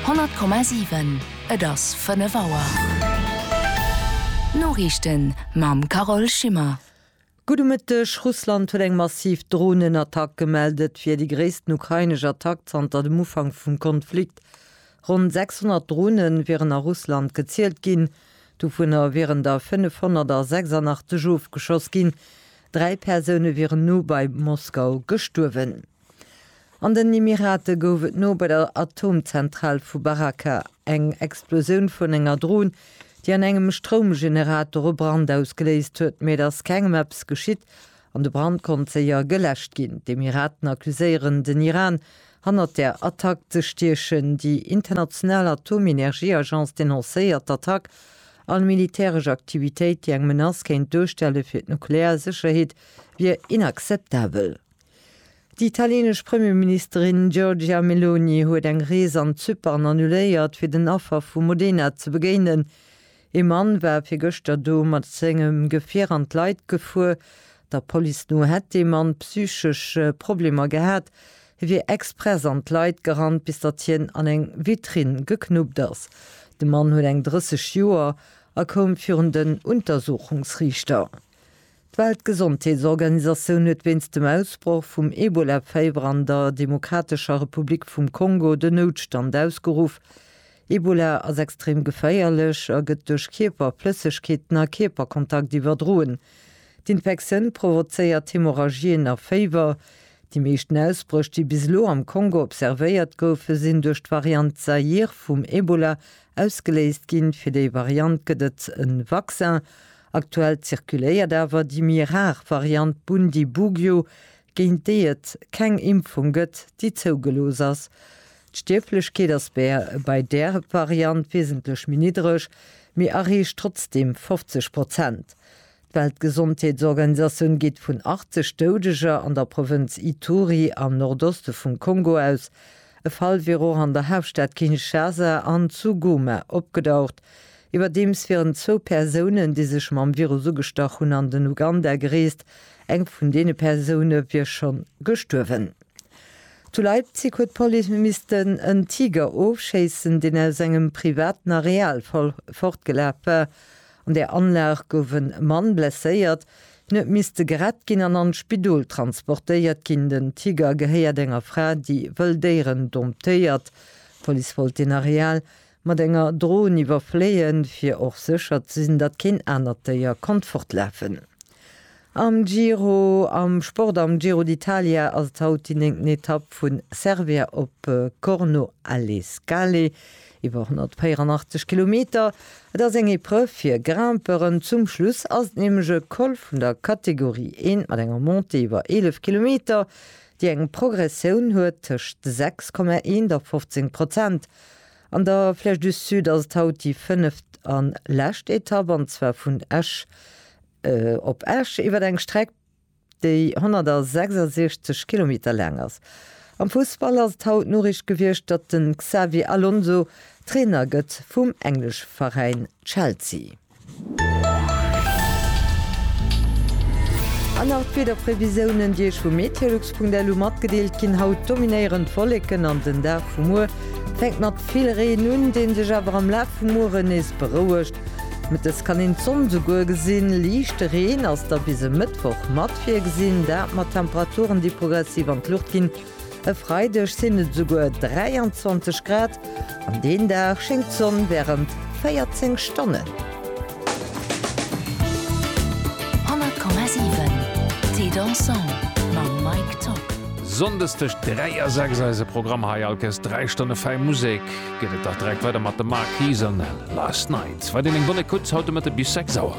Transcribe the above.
100,7 Et ass 5 Auer. D'Noriichten mam Carole Schimmer. Gudde Mëtteg. Russland huet eng massiv Dronenattack gemellt. Et wier déi gréissten ukrainesch Attack zanter dem Ufank vum Konflikt. Ronn 600 Drone wieren a Russland gezielt ginn. Dovunner wieren der 586 ofgeschoss ginn. Dräi Persoune wieren no bei Moskau gestuerwen. An den Emirate gouf et no bei der Atomzentral vu Baraka eng Explosioun vun enger Dron, déi an engem Stroumgenerator e Brand ausgeléist huet, mee et ass kengem eppes geschitt an de Brand konnt séier geläscht ginn. D'Emiraten accuséieren den Iran, hannert der Attack ze stiechen. Déi international Atomenergieagence denoncéiert d'Attack, all militäresch Aktivitéit, déi eng Menace kéint duerstelle fir d'nuklear Sécherheet, wier inakzeptabel. Déi italienesch Premierministerin Giorgia Meloni huet eng Rees an Zypern annuléiert, fir den Affer vu Modena ze begéinen. Ee Mann war fir gëschter do mat sengem Gefier an d'Leit gefuer. Der Police no hätt dee Mann psychesch Problemer gehat. Hie wier express an d'Leit gerannt, bis datt hien an eng Vitrinn geknuppt ass. De Mann huet eng 30 Joer a koum virun den Untersuchungsriichter. D'Weltgesondheetsorganisatioun huet wéinst dem Ausbroch vum Ebola-Féiwer an der Demokratescher Republik vum Kongo den Noutstand ausgeruff. Ebola ass extrem geféierlech a gëtt duerch Kierperflëssegkeeten a Kierperkontakt iwwerdroen. D'Infektioun provozéiert Hemorrhagien a Féiwer. Déi meeschten Ausbréch, déi bis elo am Kongo observéiert goufen, sinn duerch d'Variant Zaïre vum Ebola ausgeléist ginn. Fir déi Variant gëtt et e Vaccin. Aktuell zirkuléiert awer déi méi rar Variant Bundibugyo, géint déi et keng Impfung gëtt, déi zougelooss ass. D'Stierflechkeet ass bei där Variant wiesentlech méi niddreg, mee erreecht trotzdeem 50 Prozent. D'Weltgesondheetsorganisatioun geet vun 80 Doudeger an der Provënz Ituri am Nordoste vum Kongo aus. E Fall wier och an der Haaptstad Kinshasa an zu Goma opgedaucht. Iwwerdeems wieren zwou Persounen, déi sech mam Virus ugestach hunn, an den Uganda gereest. Eng vun deene Persoune wier scho gestuerwen. Zu Leipzig huet d'Police missten en Tiger ofschéissen, deen aus engem privaten Areal fortgelaf war. An där Anlag gouf e Mann blesséiert. Hien huet misste gerett ginn an an d'Spidol transportéiert ginn. Den Tiger gehéiert enger Fra, déi wëll Déieren domptéiert. D'Police wollt deen Areal Mat enger Drohn iwwerfléien, fir och sécher ze sinn, datt keen anert Déier konnt fortlafen. Am Giro, Am Sport, Am Giro d'Italia ass et haut déi néngten Etapp vu Cervia op Corno alle Scale, iwwer 184 Kilometer. Et ass eng Epreuve fir Grimpeuren, zum Schluss ass et nämlech e Col vun der Kategorie I mat enger Montée iwwer 11 Kilometer, déi eng Progressioun huet tëscht 6,1 a 15 Prozent. An der Flèche du Sud ass et haut déi fënneft an lescht Etapp, an zwar vun Esch op Esch iwwert eng Streck, déi 166 Kilometer laang ass. Am Fussball ass et haut d'Noriicht gewiescht, datt de Xabi Alonso Trainer gëtt vum englesch Veräin Chelsea. An nach d'Wiederprevisioune, déi Iech vu meteolux.lu matgedeelt ginn. Haut dominéieren d'Wolleken an den Dag vu muer fänkt mat vill Reen un, dee sech awer am Laf vum Muere nees berouegt. Mëttes kann een d'Sonn esouguer gesinn. Liichte Reen ass da bis e Mëttwoch mat virgesinn, dat mat Temperaturen, déi progressiv an d'Luucht ginn. E Freideg sinn et esouguer 23 Grad an deen Dag schéngt d'Sonn wärend 14 Stonnen. Sonndes tëscht 3 a 6 eise Programm hei. Alkes 3 Stonne fäi Musek geet et dach direkt weider mat de Marquise an Last Night. Weider eng bonne Écoute haut de Mëtte bis 6 Auer.